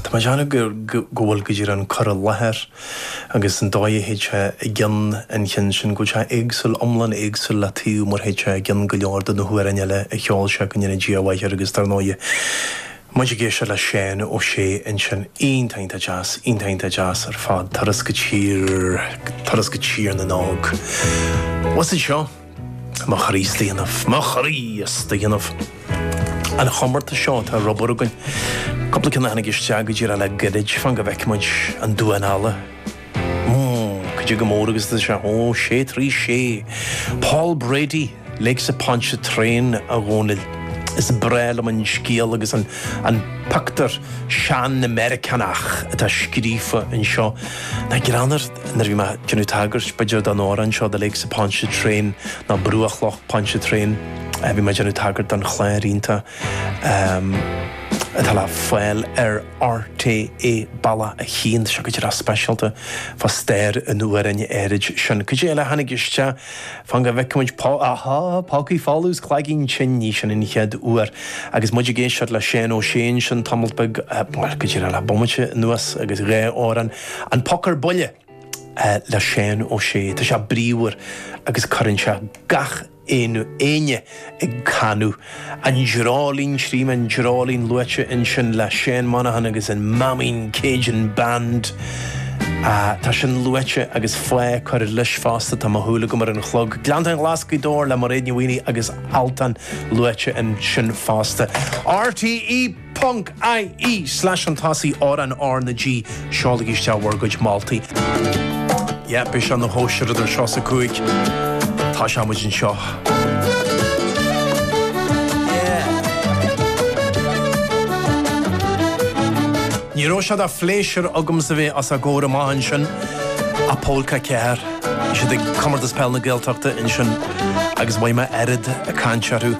Tá mé ag déanamh go bhfuil idir an cur i láthair agus an dóigh a théid sé i gcion an chinn sin, go bhfuil sé éagsúil, iomlán éagsúil le taobh mar a théid sé i gcion go leor de na hamhráin eile a cheol sé, go ndéana Dia a mhaith air agus dar ndóigh muid ag éisteacht le Seán Ó Sé ansin, iontach deas, iontach deas ar fad, Turas go tír, turas go Tír na nÓg. Bhuel is é seo. Mo chroí is dhéanamh. Mo chroí is dhéanamh. An chomórtas seo atá ar obair againn, cúpla ceann a tháinig isteach go díreach le gairid, fan go bhfeicfidh muid an duan eile. Go dtí go mór agus sea, ó sé trí sé, Paul Brady, Lakes of Pontchartrain, a Dhónaill. Is breá liom an scéal agus an an pioctúr sean-Mheiriceánach atá scríofa anseo. Nach greannmhar. Nuair a bhí mé ag déanamh tagairt, b'fhéidir, don amhrán seo, The Lakes of Pontchartrain, nó Bruach Loch Pontchartrain, bhí mé ag déanamh tagairt don chlár iontach atá le fáil ar RTÉ Balla 1. Tá sé go deas speisialta fá stair an amhráin áirid sin. Cad é eile a tháinig isteach? Fan go bhfeice muid. Pá, ahá, Pócaí Folamh is Cloigeann Tinn, ní sin an chéad uair. Agus muid ag éisteacht le Seán Ó Sé ansin tamalt beag, bhuel, go dtí le bomaite anuas, agus dhá amhrán, An Poc ar Buile le Seán Ó Sé. Tá sé bríomhar agus cuireann sé gach éinne ag canadh. An Dreoilín Trím an Dreoilín luaite ansin le Seán Monaghan agus an Máimín Cajun Band. Tá sin luaite agus faoi cur leis fosta tá mo shúil agam ar an chlog. Gleanntáin Ghlas' Ghaoth Dobhair le Mairéad Ní Mhaonaigh agus Altan luaite ansin fosta. RTÉ. ie slash an t-sí ár an RnaG seolaigí isteach bhur gcuid moltaí. Yep, beidh sé ina chóisir idir seo is a cúig. Tá sé muid anseo. Yeah. Ní raibh sé de phléisiúr agamsa a bheith os a gcomhair amach ansin, a Pólca Ceathair. Bhí siad ag Comórtas Peile na Gaeltachta ansin agus mhothaigh mé oiread cainte orthu.